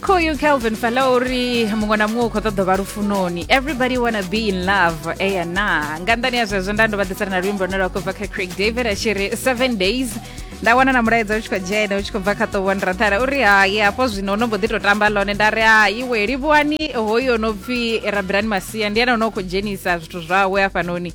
khoyu kelvin fala uri muṅwe na muṅwe u khou ṱoḓa vha lufunoni everybody wanna be in love eya na nga nnḓani ya zwezwo nda ndo vha ḓisana na luimbo lune lwa khou bva kha craig david a tshi ri seven days nda wana na mulaedza u tshi khou dzhena u tshi khou bva kha ṱovho nrathala uri hai hafho zwino no mbo ḓi tou tamba ḽone nda ri ha iwe livhuwani hoyo no pfhi rabirani masia ndi ene o no khou dzhenisa zwithu zwawe hafhanoni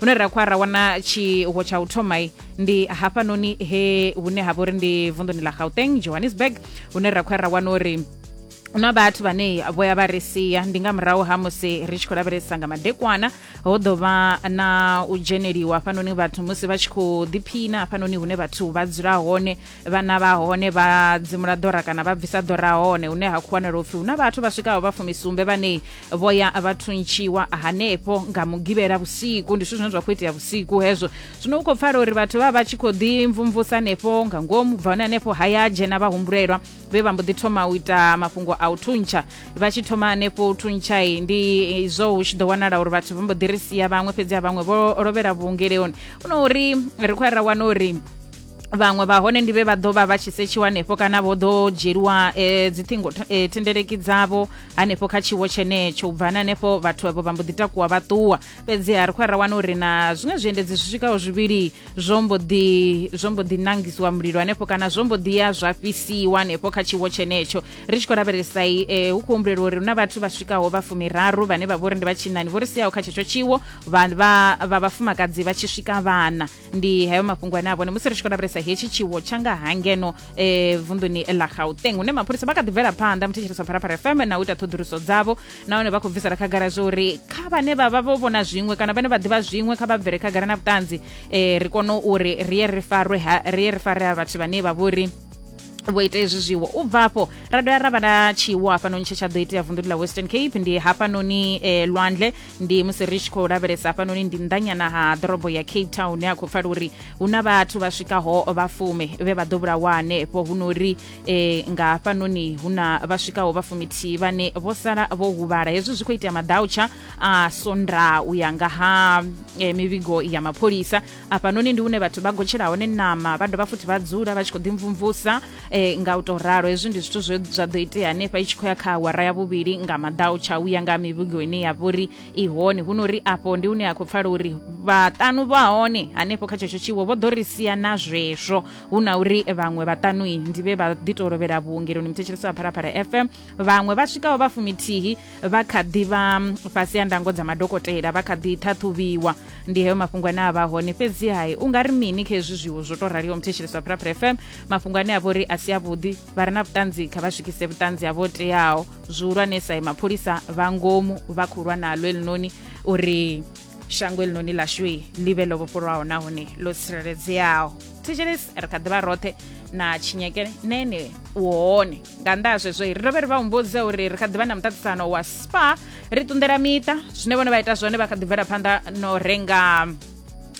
hune ra khwa ra wana tshiwo tsha u thoma ndi hafhanoni he hune ha vha uri ndi vunḓuni ḽa gauteng johannesburg hune ra khwa ra wana uri na vhathu vhane vho ya vha ri sia ndi nga murahu ha musi ri tshi khou lavhelesa nga madekwana ho ḓo vha na u dzheneliwa hafhanoni vhathu musi vha tshi khou ḓiphina hafhanoni hune vhathu vha dzula hone vhana vha hone vha dzimula ḓora kana vha bvisa ḓora hone hune ha khwanela upfi huna vhathu vha swikaho vha fumisumbe vhane vho ya vha thuntshiwa hanefho nga mugivhela vhusiku ndi zwithu zwine zwa khou itea vhusiku hezwo zwino u khou pfala uri vhathu vha vha tshi khou ḓi mvumvusa hanefho nga ngomu bva hone hanefho haya dzhena vha humbulelwa vhe vha mbo ḓi thoma u ita mafhungo a u thuntsha vha tshi thoma hanefho u thuntshayi ndi izwo hu tshi ḓo wanala uri vhathu vha mbo ḓi ri sia vhaṅwe fhedzi a vhaṅwe vho lovhela vhuongeleoni huno uri ri khou ra wana uri vhaṅwe vha hone ndi vhe vha ḓo vha vha tshi setshiwa hanefho kana vho ḓo dzhieliwa eh, dziṱhingo eh, thendeleki dzavho hanefho kha tshiwo tshenetsho u bvani hanefho vhathu avho vha mbo ḓi takuwa vha ṱuwa fhedziha ri khou ra wana uri na zwiṅwe zwiendedzi zwi swikaho zwivhili zwo mbo ḓi zwo mbo ḓi nangisiwa mulilo hanefho kana zwo mbo ḓi ya zwa fhisiwa hanefho kha tshiwo tshenetsho ri tshi khou lavhelesa eh, hu khou humbulelwa uri hu na vhathu vha swikaho vha fumiraru vhane vha vho ri ndi vha tshinani vho ri siyaho kha tshetsho tshiwo vha vhafumakadzi vha tshi swika vhana ndi hayo mafhungo ane a vhone musi ri tshi khou lavhelesa hetshi tshiwo tsha nga ha ngeno eh, vunḓuni ḽa gauteng hune mapholisa vha kha ḓi bvela phanḓa muthetshelesa wa pharapara fm na u ita ṱhoḓuluso dzavho nahone vha khou bvisela khagala zwa uri kha vhane vha vha vho vhona zwiṅwe kana vhane vha ḓivha zwiṅwe kha vha bvele khagala na vhuṱanzi eh, ri kone uri ri ye ri farwe ha- ri ye ri fare ha vhathu vhane vha vhori vho ita hezwi zwiwo u bva afho ra dovha ra vha na tshiwo hafhanoni tshe tsha ḓo itea vunḓuni ḽa western cape ndi hafhanoni eh, lwandle ndi musi ri tshi khou lavhelesa hafhanoni ndi nnḓanyana ha ḓorobo ya cape town hune a khou pfala uri hu na vhathu vha swikaho vha fume vhe vha ḓo vhulawa hanefho hu nori e, nga hafhanoni hu na vha swikaho vha fumithihi vhane vho sala vho huvhala hezwi zwi khou itea madautsha a sonda u ya nga ha e, mivhigo ya mapholisa afhanoni ndi une vhathu vha gotshela hone ṋama vha dovha futhi vha dzula vha tshi khou ḓimvumvusa eh, nga u tou ralo hezwi ndi zwithu zwe zwa ḓo itea hanefha i tshi khou ya kha awara ya vhuvhili nga maḓau tsha u ya nga mivhigo ine ya vha uri i hone hu no uri afho ndi hune a khou pfala uri vhaṱanu vha hone hanefho kha tshetsho tshiwo vho ḓo ri sia na zwezwo hu na uri vhaṅwe vhaṱanui ndi vhe vha ḓi tou lovhela vhuongeloni muthetshelesi wa phalaphala fm vhaṅwe vha swikaho vha fumithihi vha kha ḓi vha fhasi ya ndango dza madokotela vha kha ḓi ṱhaṱhuvhiwa ndi heyo mafhungo ane a vha hone fhedzi hai u nga ri mini kha hezwi zwiwo zwo tou raliho muthetshelesi wa phuraphura fm mafhungo ane a vha uri a si avhuḓi vha re na vhuṱanzi kha vha swikise vhuṱanzi havho teaho zwihulwanesa i mapholisa vha ngomu vha khou lwa nalo elinoni uri shango elinoni ḽashue ḽi vhe ḽo vhofholwaho nahone ḽo tsireledzeaho thetshelesi ri kha ḓi vha roṱhe na tshinyekele nene u hone nga nnḓa ha zwezwo ri dovhe ri vha humbudze uri ri kha ḓivha na muṱaṱisano wa spa ri ṱunḓela miṱa zwine vhone vha ita zwone vha kha ḓi bvela phanḓa no renga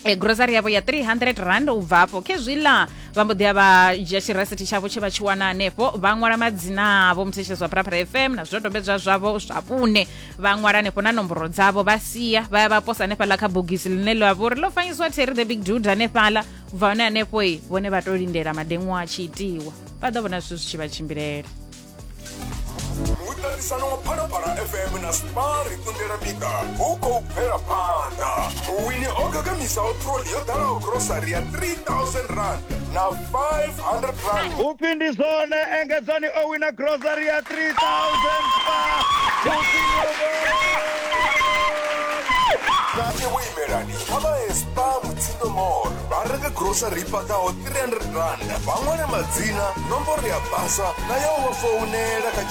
e grocery yavho ya 300 rand u bva afho khezwiḽa vha mbo ḓi ya vha dzhia tshirasithi tshavho tshe vha tshi wana hanefho vha ṅwala madzina avho muthetshedzo wa pharapara fm na zwidodombedzwa zwavho zwa vhune vha ṅwala hanefho na nomboro dzavho vha sia vha ya vha posa hanefhaḽa kha bogisi ḽine ḽa vha uri ḽo fanyisiwa terry the big dude hanefhaḽa u bva hone hanefho i vhone vha to lindela madeṅwa a tshi itiwa vha ḓo vhona zwithu zwi tshi vha tshimbilela muṱaṱisano wa phalaphala fm na spar kundela bika hu khou bvela phanḓa wini o gagamisaho troli yo ḓalaho grosari ya 3000 rand na 500 rand upfi ndi zwone engedzani o wina grosari ya 3000 kake wo imelani kha vha hespa mutsindo mall vha renge grosari i fhaṱaho 300 rand vha ṅwale madzina nomboro ya basa na ya u vha founela kha